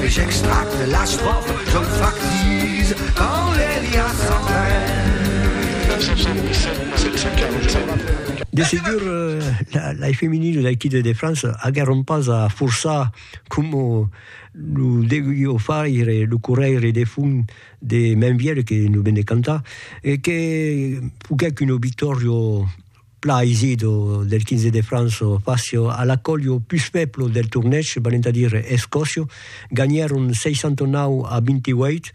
J'extracte l'estròfa, jo en fac sis quand les liasses s'en vèn. 717 747. De segur, lai feminil l'Equide de França aguèron pas a forçar coma lo deguió faire lo corrèire de fum de Mainvièlh que nos ven de cantar e que foguèc un obitòrio Pla Isido del 15 de Franço Facio a l'acolio pus fèblo del tornèch, venent a dire Escòcio, ganhèron 69 a 28.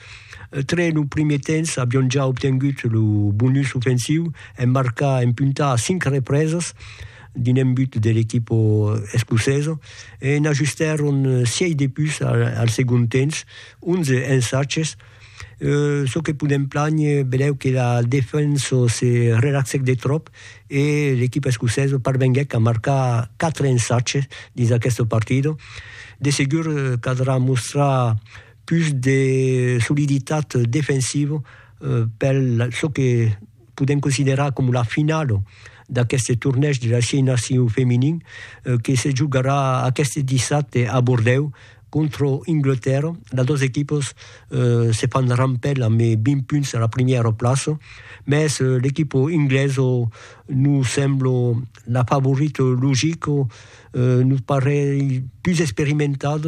Tre lo primier temps avion ja obtengut lo bonus ofensiu en marcar en punta a 5 represas dins un but de l'equipa escocesa e n'ajustèron 6 de pus al segond temps, 11 ensaches. çò que podèm planher, benlèu que la defensa se relaxèc de tròp e l'equipa escocesa parvenguèc a marcar 4 ensatges dins aquesta partida. De segur caldrà mostrar pus de soliditat defensiva per çò que podèm considerar coma la finala d'aqueste tornèish de las 6 nacions feminin que se jogarà aqueste dissabte a Bordèu contra Anglatèrra. Las dos equipas se fan rampèl amb 20 punts a la primièra plaça, mès l'equipa anglesa nos sembla la favorita logica nos parelh pus experimentat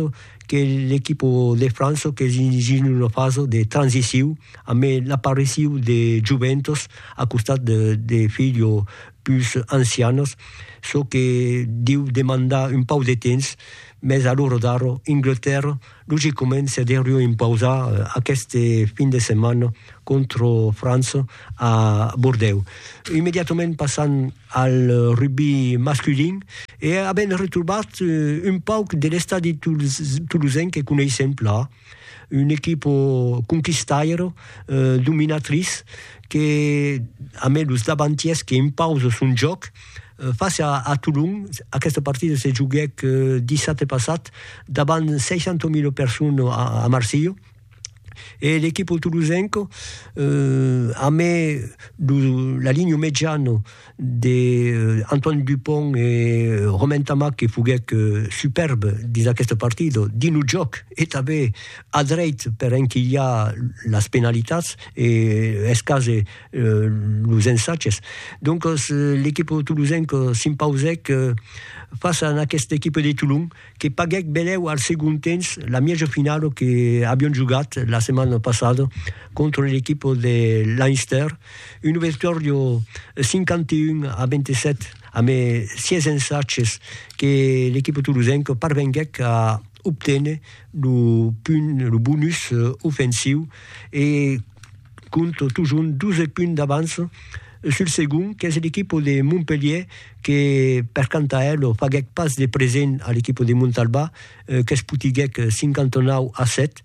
que l'equipa de França qu'es dins una fasa de transiciu ambe l'apariciu de joventas a costat de filha pus ancianas, çò que deu demandar un pauc de temps, mès a l'ora d'ara Anglatèrra Luxe comença de riu impausar aqueste fin de setmana contra França a Bordèu. Immediatament passam al rugbi masculin e avèm retrobat un pauc de l'estadi tolosenc que coneissèm plan, una equipa conquistaira, dominatrice, que a mai los davantièrs que impausa son jòc, Face a Tolon, aquesta partida se joguèc dissabte passat davant 60.000 personnes a Marsilh e l'equipo tolosenco amé la linha mejana de Antoine Dupont e Romain Ntamack que foguèc superbe dins aquesta partida dins lo jòc e tanben a dreit per enquilhar las penalitats e es cas los ensatges. Doncas l'equip tolosenc s'impausèc fàcia a aquesta equipa de Tolon que paguèc benlèu al segond temps la mièja finala que avián jogat la setmana passada contra l'equip de Leinster, una victòria 51 a 27 amb 6 ensatges que l'equipa tolosenca parvenguèc a obténer lo punt, lo bonus ofensiu e compte totjorn 12 punts d'avance sul segond qu'es l'equipo de Montpelhier que per quant a elo faguèc pas de present a l'equipo de Montalbà qu'es potiguèc 59 a 7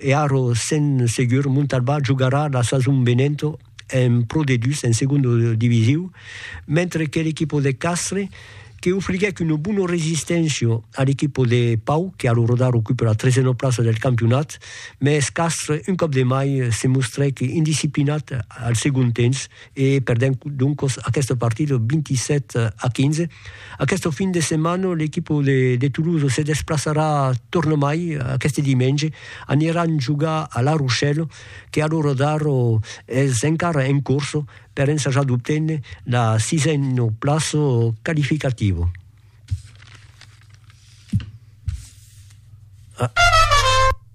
e ara sen segur Montalbà jogarà la sason venenta en Pro D2 en segonda divisiu mentre que l'equipo de Castres que ofriguèc una bona resisténcia a l'equipa de Pau, que a lo rodar ocupa la tresena plaça del campionat, mès Castres, un còp de mai, se mostrèc indisciplinat al segond temps e perdèc doncas aquesta partida 27 a 15. Aquesta fin de setmana, l'equipa de Toulouse se desplaçarà tornamai, aqueste dimenge, aniran jogar a La Rochelle, que a lo rodar es encara en corsa, per ensajar d'obténer la sisena plaça qualificativa.